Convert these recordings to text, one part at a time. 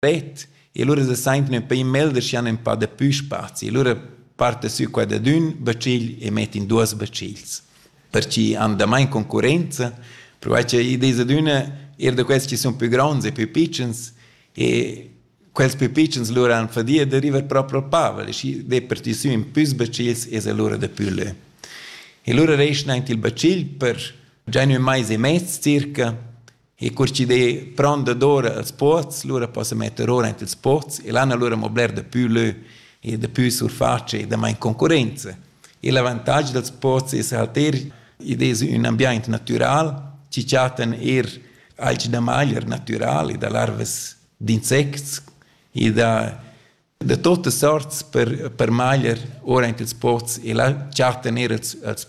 pet e lura se saintan ün pei melder schi han ün pa dapü spazi e lura parta sü qua dad ün bacigl e mettan duos bacigls per chi han damain concurrenza perquai cha id esa d'üna eir da quels chi sun pü gronds e pü pitschens e quels pü pitschens lura han fadia da river proprio al pavel e schi det per ti sü ün püs bacigls e se lura dapü lö. E lura reschna aint il bacigl per già ün mais e mez circa e cur chi d'he pront dadora els pots, lura possa metter ora ant ils pots e l'han alura mo bler dapü lö e dapü surface e damain concurrenza. E l'avantag dals pots es halter id es ün ambiaint natüral chi chattan eir alch da magler natüral e da larvas d'insects e da da tuotta sorts per per magler ora ant ils pots e là chattan eir els els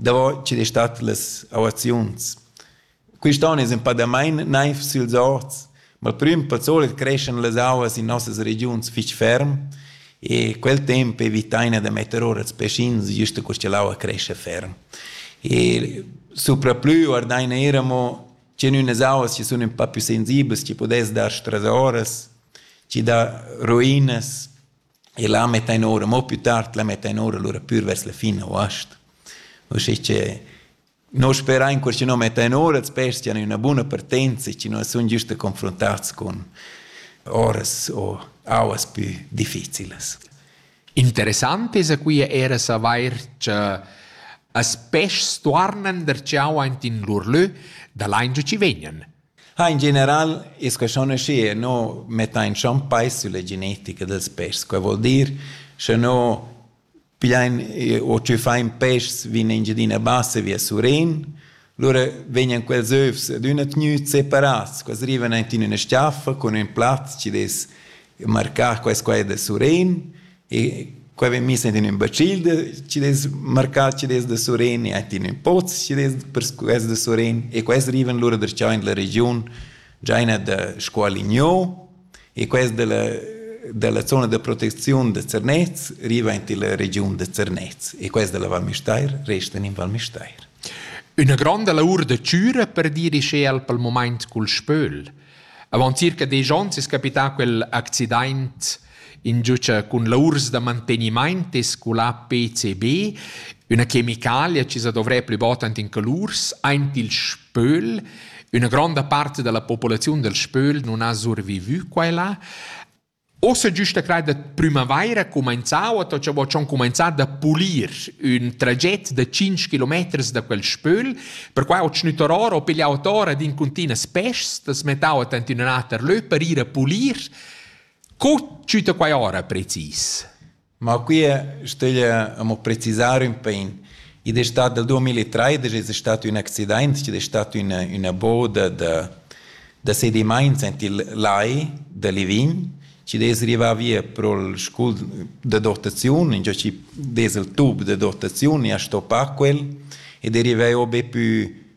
davo chi'd es stat las auaziuns. Quist on es ün pa damain naiv süls orts, ma il prüm pa solit creschan las auas in nossas regiuns fich ferm e quel temp evitaina da metter our ils peschins güst cur cha l'aua crescha ferm. E supraplü guardaina eir amo che in ünas auas chi sun ün pa pü sensiblas, chi pudess dar strasoras, chi dà ruinas e là mettain ora, mo più tard la mettain ora lura pür vers la fin august. Uschè che noi sperain che schi no mettain ora els pesti han üna buna partenza e che noi sun giusta confrontats con oras o auas più difficilas. Interessant es qui era savair che as peschs tuornan der ciao aint in lur lö da lain giu ci vegnan. Ha in general es que schon aschi e no mettain schon peis sülla genetica dels peschs. Quai vuol dir, sche no pigliain o tschüffain peschs in Engiadina Bassa via Surén, lura vegnan quels övs ad üna tgnüt separats. Quels rivan aint in üna stiaffa cun ün plaz chi'd es marcà quai e quai da Surén E qua vegn miss in ün bacil chi dess marcà chi dess da Surén e in ün poz chi dess per quest da Surén e quest rivan lura darcheu in la regiun giaina da Scualigno e quest da la dalla zona da protecziun da Zernez riva in la regiun da Zernez e quest da la Val Müstair resta in Val Müstair. Üna gronda lavur da chüra per dir ischel pel moment cul spöl. Avant circa desch ons es capità quel accidaint Ingiucha cun laurs da mantegnimaint es sculà PCB, üna chemicalia chi sa dovrè plü bod ant in calurs, aint il spöl. Üna gronda part da la populaziun dal spöl nun ha survivü qua e là. Ossa güsta crai da prümavaira cumainzà o to cha vo dschon cumainzà da pulir ün traget da 5 kilometers da quel spöl, perquai ho tschnüttar or o piglià ot ora d'incuntinas peschs, t'as mettà ot ant in ün ater lö per ir a pulir. Co tschüta quai ora precis? Ma qui stögl amo precisar ün pin. Id es stat dal 2013 es stat ün accidaint chi'd es stat üna üna boda da da sedimaints aint il lai da Livign chi'd es rivà via pro'l scul da dotaziun, ingio chi dess il tub da dotaziun e a stoppa quel ed è rivà o be pü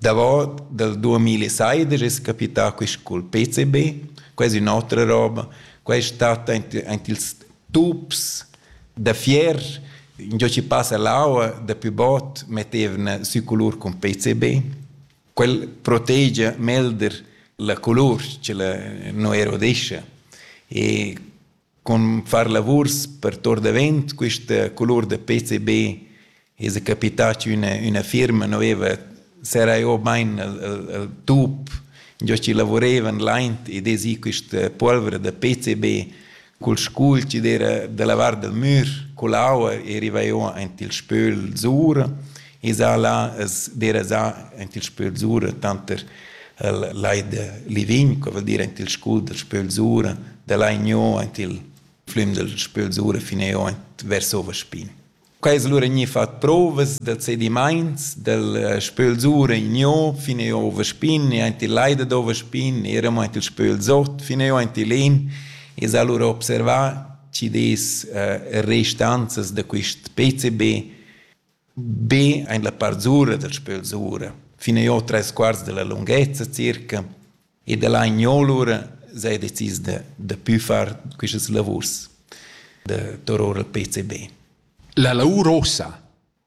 Davot dal duamilla e seidesch es capità quist cul PCB. Quai es ün'otra roba. Quai stat aint aint ils tups da fier. Ingiò chi passa l'aua dapü bot mettevna sü culur cun PCB. Quel protegia melder la culur cha la nu erodescha. E Cun far lavurs per Tor davent quista colur da PCB esa capità chi üna üna firma nu veva serrà jo bain il il il tup giò chi lavurevan laint ed esa quista polvra da PCB cul scul chi'd era da lavar dal mür, cull'aua e riva jo aint il spöl zura Isala es derasà aint il Spöl Zura tanter il Lai da Livign, co voul dir aint il scul dal Spöl Zura, da là igno aint il flüm dal Spöl Zura fin eo aint vers Ovaspin. Quai es lura gnì fat prouvas dals sedimaints dal Spöl Zura igno fin eo Ovaspin e aint il Lai dad Ovaspin eramo aint il Spöl Zot fin eo aint il In e s'ha lura observà chi des restanzas da quist PCB Be ein la part sura dals pels ora, fin e jeu treis quarts dalla lunghezza circa ed ella ein gnolura sei decis da da pü far quistas lavurs da tor ora al PCB. La lavur ossa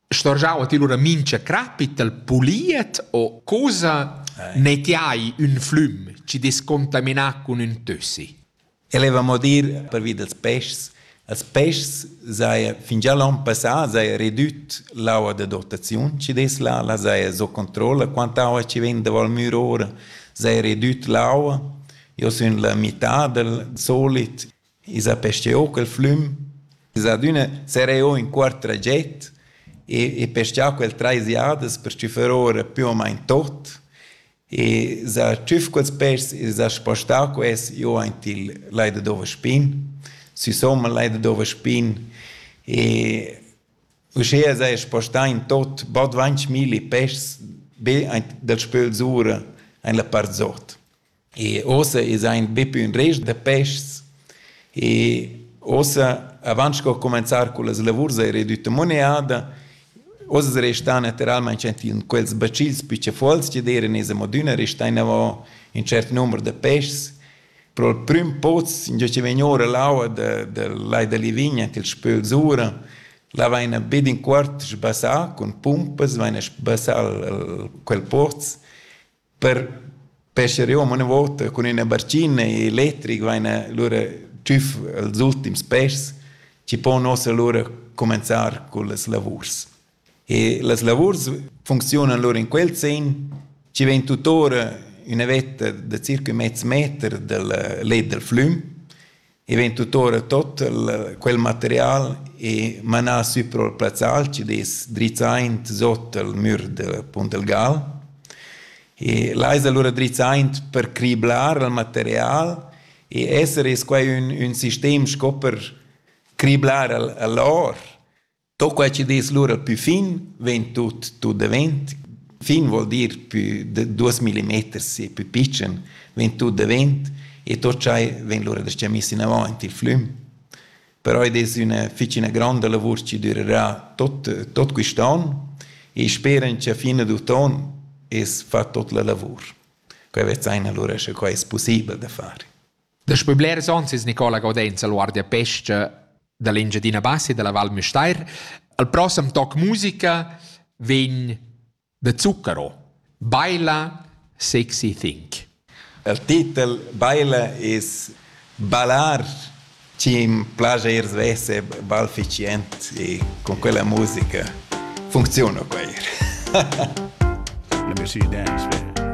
storgiava ti lura mincha crapit al puliet o cosa ne ti hai ün flüm chi descontaminà cun ün tössi? El heva mo dir pervi dals peschs. Als peschs saja fingià l'on passà saja redüt l'aua da dotaziun chi dess là, là saja sco controlla quanta aua chi vegn da Val Müra ora, saja redüt l'aua. Io sun la mità dal solit. I s'ha pescheu quel flüm. Es adüna sereo in quart traget e, e peschà quel trais jadas per stüffer ora più o main tot. e sa tschüf quels pêrs e s'ha spostà quels giò aint il Lai da Dova Spin, sü somma il Lai da Dova Spin e uschea s'haja spostà in tot bod dvantg milli pêschs be aint dal spöl sura aint la part zot. E uossa esa aint be pü ün rest da pêschs e uossa avant sco comanzar cullas lavurs hai redütta moneada Uss restan natiralmain enfin quels bacils pli tschaffuls che d'eira esa modüna restà inavò ün tschert numer da peschs. Pro il prüm poz ingio chi vegn oura l'aua da dal Lai da Livigna ant ils Spöls ura, là vaina be d'inquart sbassà cun pumpas, vaina sbassà quel poz Per pescher jeu amo ina vota cun ina barcina e electric vain lura tschüf els ultims peschs chi pon uossa lura cumenzar cullas lavurs. E las lavurs funcziunan lura in quel sen chi vegn tutora üna vetta da circa mez meter dal let dal flüm e vegn tuttora tot quel material e manà sü pro il plazzal chi'd es drizzaint sot al mür del Puntelgal e là es alura drizzaint per criblar il material e esser es quai ün ün sistem sco per criblar al a l'or To quai chi dess lura pü fin vegn tut tut davent. Fin vuol dir pü da duos millimeters e pü pitschen vegn tut davent e tot schai vegn lura da sta miss inavant il flüm. Però id es üna fich üna gronda lavur chi dürerà tot tot quist on e speran cha fin ad uton es fat tot la lavur. Quai vezzaina lura sche quai es pussibel da far. Daspö blers ons es Nicola Gaudenz al Guardia Pesca da l'Engiadina Bassa e dalla Val Müstair. Al prossem toc musica vegn da Zucchero, Baila Sexy Think. Il titel Baila es ballar chi im plaja ir svesse balficient e con quella musica funziona per ir. Let me see you dance, man.